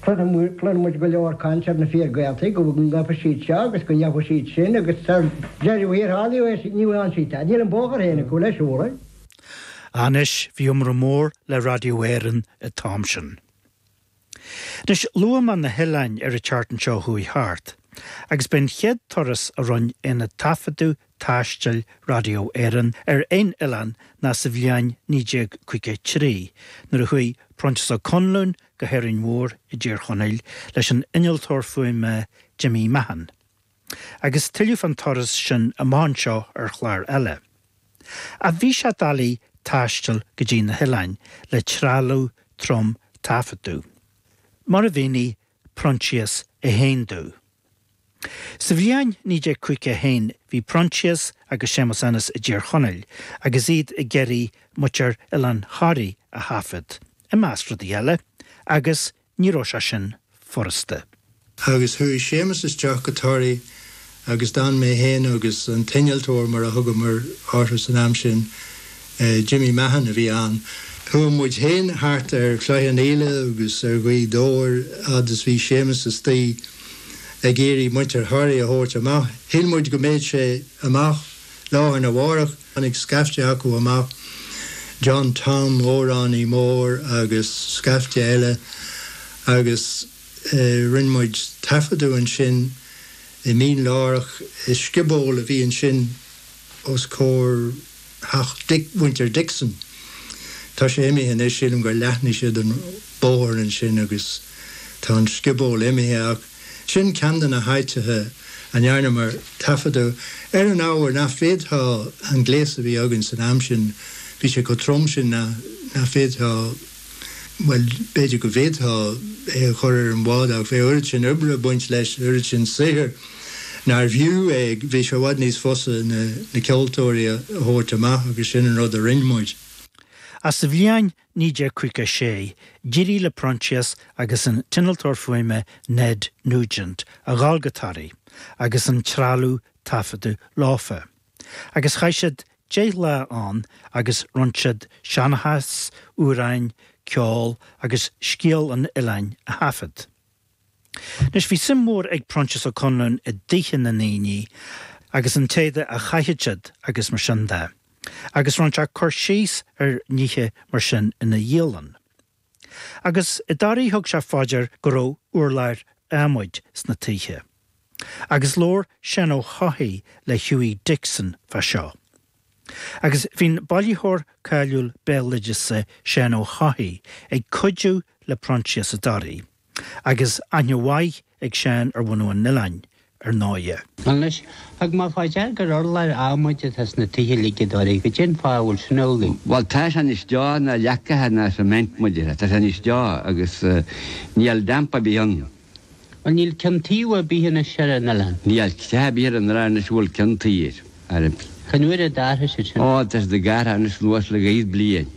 Cluinfidh muid go leor caint ar na fíor-Ghaeltachtaí, go ngabhfaidh siad seo agus go ndéanfaidh siad sin agus sa deireadh thiar thall ní dhéan siad tada. Níl an bóthar féin acu le siúl. Anois, bhí iomrá mór le Radio Éireann an t-am sin. Anois, luamar na hoileáin ar an tseachtain seo a chuaigh thart, agus b'é an chéad turas a rinne aonad taifeadta taistil Radio Éireann ar aon oileán ná sa bhliain 1953 nuair a chuaigh Proinsias Ó Conluain go hÁrainn Mhór i dTír Chonaill leis an innealtóir fuaime Jimmy Mahon. Agus tuilleadh fán turas sin amach anseo ar chlár eile. Ach bhí sé doiligh taisteal go dtí na hoileáin le trealamh trom taifeadta. Mar a mhínigh Proinsias Ó Conluain. Sa bhliain 1951 bhí Proinsias agus Séamus Ennis i dTír Chonaill agus iad ag iarraidh muintir Oileán Thoraí a thaifeadadh, i measc rudaí eile, agus ní raibh sé sin furasta. Agus chuaigh Séamus isteach go Toraigh agus d'fhan mé féin agus an t-innealtóir, mar a thugamar orthu san am sin, Jimmy Mahon, a bhí ann, chuaigh muid féin thart ar Chloich Chionnaola agus ar Ghaoth Dobhair fhad is bhí Séamus istigh ag iarraidh muintir Thoraí a thabhairt amach. Shíl muid go mbeadh sé amach lá arna mhárach. Tháinig scaifte acu amach, John Tom, amhránaí mór, agus scaifte eile, agus Rinne muid taifeadadh ansin i Mín Lárach, i scioból a bhí ansin os comhair theach mhuintir Dixon. Tá sé imithe anois, sílim gur leathnaigh siad an bóthar ansin agus tá an scioból imithe ach sin ceann de na háiteacha a ndearnamar taifeadadh. Ar an ábhar nach bhféadfá an gléas a bhí againn san am sin, bhí sé chomh trom sin nach bhféadfá Bhuel, b'fhéidir go bhféadfá é a chur ar an bhád ach bheadh oiread sin oibre ag baint leis, oiread sin saothair nárbh fhiú é. Bhí sé i bhfad níos fusa na ceoltóirí a thabhairt amach agus sin an rud a rinne muid. Ach sa bhliain 1956, d'éirigh le Proinsias agus an t-innealtóir fuaime Ned Nugent a dhul go Toraigh agus an trealamh taifeadta leofa. agus chaith siad deich lá ann agus rinn siad seanchas, amhráin, ceol agus scéal an oileáin a thaifead. Anois, bhí suim mhór ag Proinsias Ó Conluain i dtithe na ndaoine agus an t-éadach a chaitheadh siad agus mar sin de, agus rinne sé cur síos ar nithe mar sin ina dhialann. Agus i dToraigh thug sé fá dear go raibh urláir adhmaid sna toighthe. Agus labhair Seán Ó hEochaidh le Hughie Dixon fá seo. Agus bhí'n bailitheoir cáiliúil béaloideasa Seán Ó hEochaidh ag cuidiú le Proinsias i dToraigh. Agus aithne mhaith ag Seán ar bhunadh an oileáin, ar ndóighe. Anois, tchím fá dear gur urláir adhmaid atá sna tithe uilig i dToraigh, goidé an fáth a bhfuil sin amhlaidh. Bhuel, tá sé níos teo ná leacaithe ná cement, muide, tá sé níos teo agus níl damp ar bith ann. Bhuel, níl ceann tuí ar bith anois ar an oileán. Níl teach ar bith ar an oileán anois a bhfuil ceann tuí air. Cén uair a d'athraigh siad sin? Ó, tá siad ag athrú anois anuas le daichead bliain.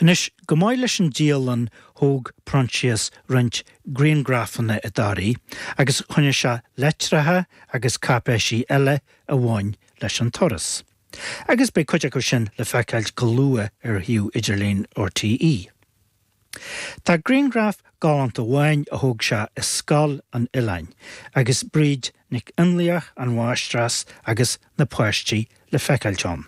Anois, chomh maith leis an dialann thóg Proinsias roinnt grianghrafanna i dToraigh agus choinnigh sé leitreacha agus cáipéisí eile a bhain leis an turas. Agus beidh cuid acu sin le feiceáil go luath ar shuíomh idirlín RTÉ. Tá grianghraf galánta amháin a thóg sé i Scoil an Oileáin agus Bríd Nic Fhionnlaoich, an mháistreás, agus na páistí le feiceáil ann.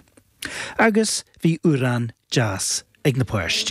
Agus bhí amhrán deas ag na páistí.